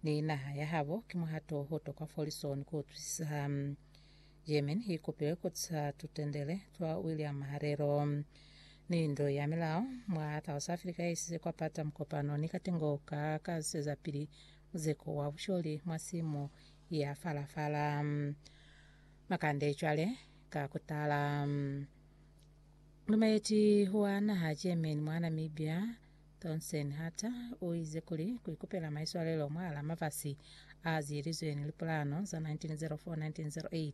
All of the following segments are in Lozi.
Ni naha ya habo ki muhato o tokwa fo lisoni ku utwisisa. German i kopilwe ku tisa tutendele twa William Maharero ni ndo ya milao mwa South Africa ya isize kwa pata mukopano ni katengo ka ka ziseza pili muzeko wa busholi mwa simu ya fala fala. Makande cwale ka kutala. Lumeleti wa naha German mwa Namibia Thomson hata u ize kuli ku ikupela maiswalelo mwahala mafasi a ziyelizwe ni lipulano za 1904-1908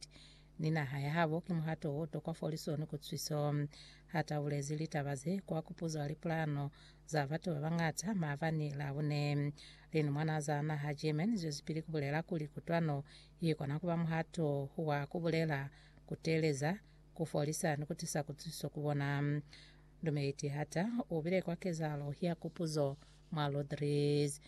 ni naha ya habo ki muhato o tokwa foliso ni kutusiso. Hata u bulezi litaba ze kwa kupuzwa lipulano za batu ba bañata maabani la bune. Linumwana za naha German zwezipili ku bulela kuli kutwano i kona ku ba muhato wa ku bulela, ku teeleza, ku folisa ni ku tisa kutusiso ku bona. Dumeli Tihata u bile kwa kezahalo ya kupuzo mwa Lodries.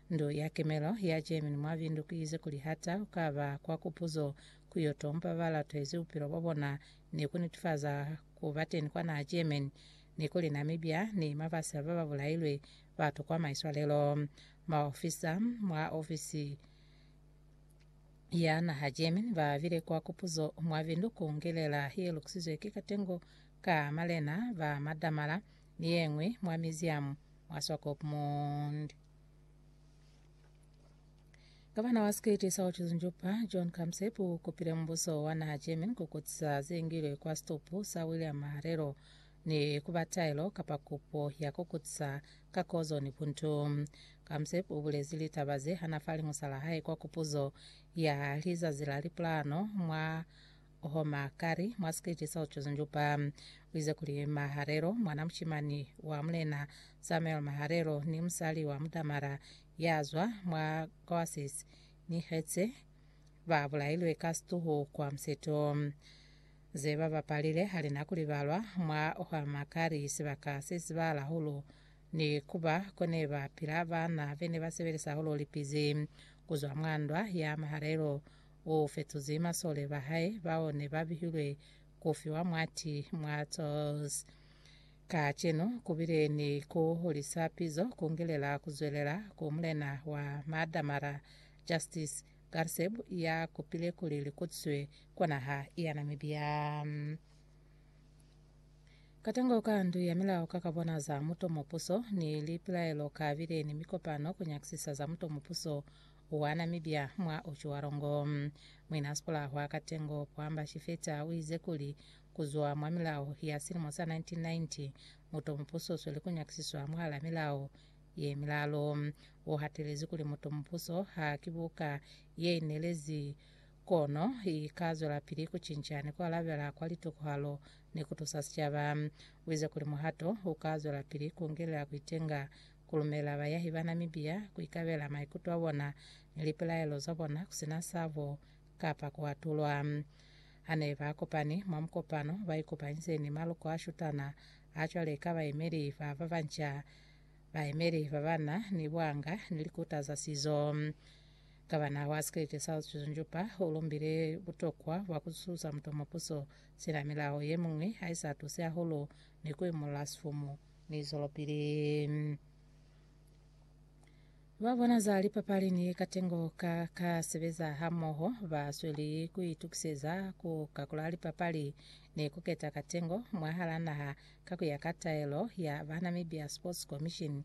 Ndu ya kemelo ya Germany mwa bindukize kuli Hata u ka ba kwa kupuzo ku yo tompa ba latwezi bupilo bwa bona ni ku nitifaza ku ba teni kwa naha Germany ni kuli Namibia ni mafasi a ba ba bulailwe ba tokwa maiswalelo. Maofisa mwa ofisi ya naha Germany ba bile kwa kupuzo mwa bindu ku ngelela ye lukisizwe ki katengo ka malena ba madamala ni ye ñwi mwa miziamu mwa Swakopmund. Gavana wa Sikiti sa Otjilinjupa, John Kamsep, u kupile mubuso wa naha German ku kutisa ze ngilwe kwa situpu sa William Maharelo ni ku ba taelo kapa kupo ya ku kutisa ka kozo ni buntu. Kamsep u bulezi litaba ze hana fa liñusa la hae kwa kupuzo ya lizazi la lipulano mwa Homa kari mwa sikeche sa Chosen Juba u ize kuli Maharelo, mwana mushimani wa Mulena Samuel Maharelo ni musali wa Mudamara ya zwa mwa Goasis ni Hetse, ba bulailwe ka situhu kwa Museto. Ze ba bapalile ha li na ku libalwa mwa Homa kari sibaka se sibala hahulu ni kuba ko ne ba pila baana be ne ba sebelisa hahulu lipizi ku zwa mwa ndwa ya Maharelo u fetuzi masole ba hae bao ne ba bihilwe ku fiwa mwati mwa Tours. Kacenu ku bile ni ku hulisa pizo ku ngelela ku zwelela ku mulena wa Maadamara, Justice Garceb ya kupile kuli li kutiswe kwa naha ya Namibia. Katango ka ndu ya milao ka ka bona za muto mupuso ni lipilaelo ka bile ni mikopano ku nyakisisa za muto mupuso Uana mibya mwa ucwalo ngo. Muina Sipula hwa Katengo, Puamba Shifeta, uize kuli, Kuzwa mwa milao ya silimo sa 1990, muto mupuso usweli kunyakisiswa mwahala milao ye milalo. Uhatelezi kuli muto mupuso ha ki buka yeinelezi kono ika zwelapili kucinca ni kualabela kwa litokohalo ni kutusa sicaba. Uize kuli muhato uka zwelapili kungelela kuitenga ku lumela bayahi ba Namibia ku ikabela maikuto a bona ni lipilaelo za bona ku si na sabo kapa ku atulwa. Ha ne ba kopani mwa mukopano, ba ikopanyize ni maloko a shutana a cwale ka bayemeli ba ba banca, bayemeli ba ba na ni buanga ni likuta za sizo. Gavana wa sikelete sa Autism Jupa u lumbile butokwa bwa ku zusuza mutomo puso sina milao ye miñwi ha i sa tuse hahulu ni ku imolola sifumu. Ni zwelopili ba bona za lipapali ni katengo ka ka sebeza hamoho ba sweli ku itukiseza ku kakula lipapali ni ku keta katengo mwahal'a naha ka ku ya ka taelo ya ba Namibia Sports Commission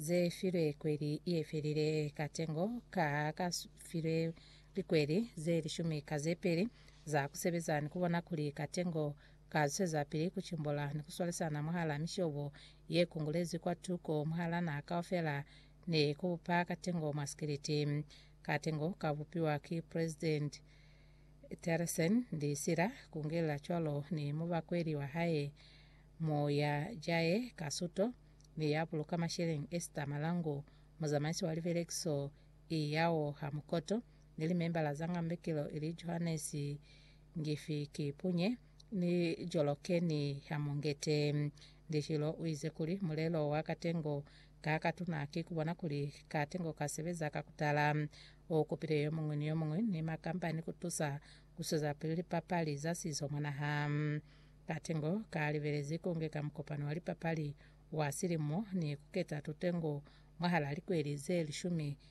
ze filwe kweli ye felile. Katengo ka ka filwe likweli ze lishumi ka ze peli za ku sebeza ni ku bona kuli katengo ka zwezapili ku cimbola ni ku swalisana mwahala mishobo ye kungulezi kwa tuko mwahala naha kaufela ni ku bupa katengo mwa sikiliti. Katengo ka bupiwa ki President Theresen ni sila kungelela cwalo ni mubakweli wa hae mo ya jaye ka suto ni ya buluka masheleñi Esther Malangu, muzamaisi wa libelekiso i yao ha mukoto, ni limembala za ngambekilo ili Johannes Ngifi ki punye ni joloke ni hamungete. Ndishilo uize kuli, Mulelo wa katengo ka katuna ki kubona kuli katengo ka sebeza ka kutala. U kupile yomuñwi ni yomuñwi ni makampani kutusa kusweza pili lipapali za sizo mwa naha. Katengo ka libelezi kungeka mukopano wa lipapali wa silimo ni kuketa tutengo mwahala likweli ze lishumi